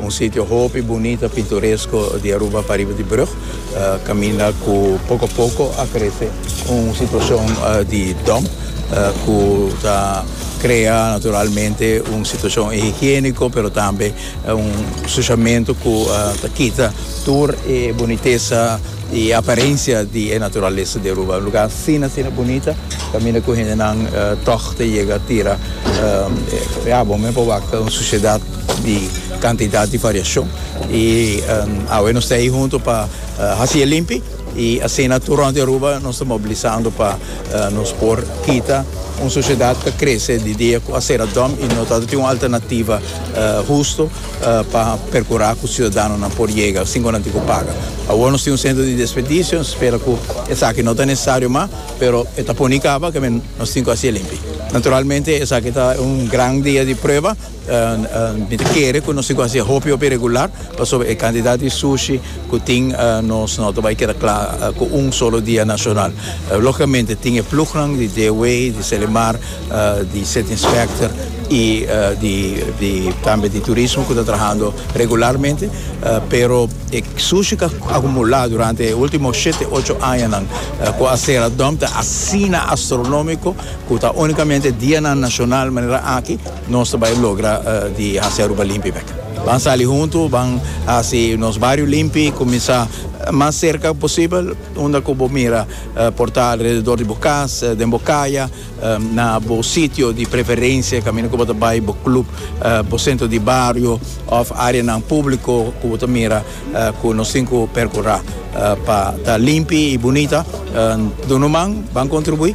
Un sitio hopi bunita, pintoresko di Aruba pariba di brug kaminda ku poko a poko a krese un situashon di dump ku ta krea naturalmente un situashon higieniko pero tambe un sushamentu ku ta kita tur e bunitesa i aparensia di e naturalesa di Aruba. Un lugá asina asina bunita kaminda ku hendenan tòg ta yega tira ya bo men pa wak un susiedat. di kantidat di variashon i awe nos ta ei huntu pa hasi e limpi i asina tur rònt di Aruba nos ta mobilisando pa nos por kita un sosiedat ta krese di dia ku a sera dòm i no ta tin un alternativa hustu pa perkurá ku siudadanonan por yega sin ku nan tin ku paga. Awor nos tin un sentro di desperdisio nos spera ku esaki no ta nesesario mas pero e ta poni kaba kem'e nos tin ku hasi e limpi. Naturalmente esaki ta un gran dia di prueba. Mi ta kere ku nos tin ku hasi e hopi hopi regular pasobra e kantidat di sushi ku tin nos no ta bai keda kla ku un solo dia nashonal. Lógikamente tin e plugnan di Dewey, di Selimar, di City Inspector i di di tambe di turismo ku ta trahando regularmente pero e sushi ku a akumulá durante e último shete ocho añanan ku a sera dòm ta asina astronómiko ku ta únikamente dianan nashonal manera aki. Nos ta bai logra di hasi Aruba limpi bek. Ban sali huntu, ban hasi nos bario limpi, kuminsá mas serka ku posibel, unda ku bo mira por ta alrededor di bo kas, den bo kaya, na bo sitio di preferensia, kaminda ku bo ta bai, bo klup, bo sentro di bario òf áreanan públiko ku bo ta mira ku nos tin ku perkurá pa ta limpi i bunita. Dunderman, ban kontribuí.